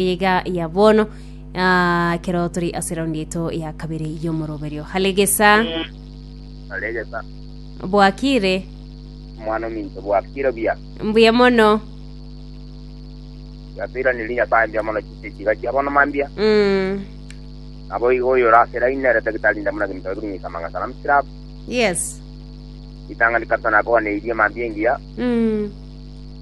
iga ya bono ah, ekero turi ase raundi yaito ya kabere y'omoroberio halegesa alegesa bwakire omwana ominto bwakire buya mbuya mono yasairaniri nyasaye mbuya mono chise chiga chia bono mambia Mm, nabo igo oyo orasera inere tagitari ndamuna kinto ebiri ng'isa manga salam sirap yes itangani kabisa nakoganeirie mambia engiya Mm,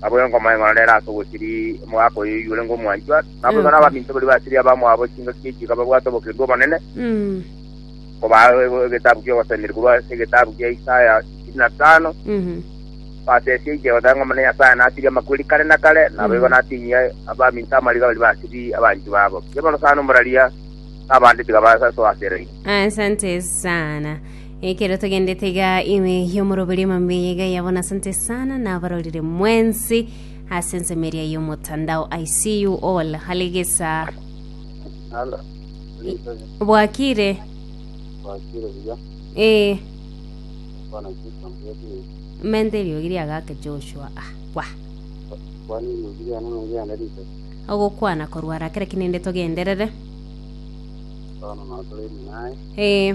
Naboigo nkomoeng'ora nere ase ogosiria omogaka oye oyio orenge omwanchwa, naboigo Yego. nabaminto baria basiria abamwabo chingaki echi ekababwate obokendu obonene, Mm. nkobaa e- egetabu ki'ogosemeria korwa ase egetabu kia Isaya ishirini na tano, Mhm. basesie inche Omonene Omone Nyasae nasirie amakweri kare na kare, naboigo Mm. natinyie abaminto amariga baria basirie abanchwa babo. Kera orosana omorari aa, na abande tiga basasoaseraine. Asante sana. Ekero togendete iga ime y'omoroberio emambia yaiga yabona asante sana nabarorire mwensi ase ensemo eria y'omotandao I see you all halegesa Halo. bwakire Wakire buya. ee Bwana Kristo mbwekire. mente eriogi riagake Joshua ah kwa Bwana Yesu yana mungu yana rito. ogokwana korwara kera kinende togenderere Bwana na tole naye. ee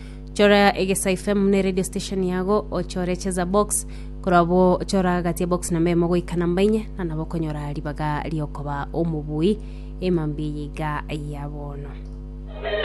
chora egesaifemu ne radio station yago ochore cheza box korabo chora gati box namba emo goika namba inye na nabo konyora ribaga riokoba omobui emambi yiga ya bono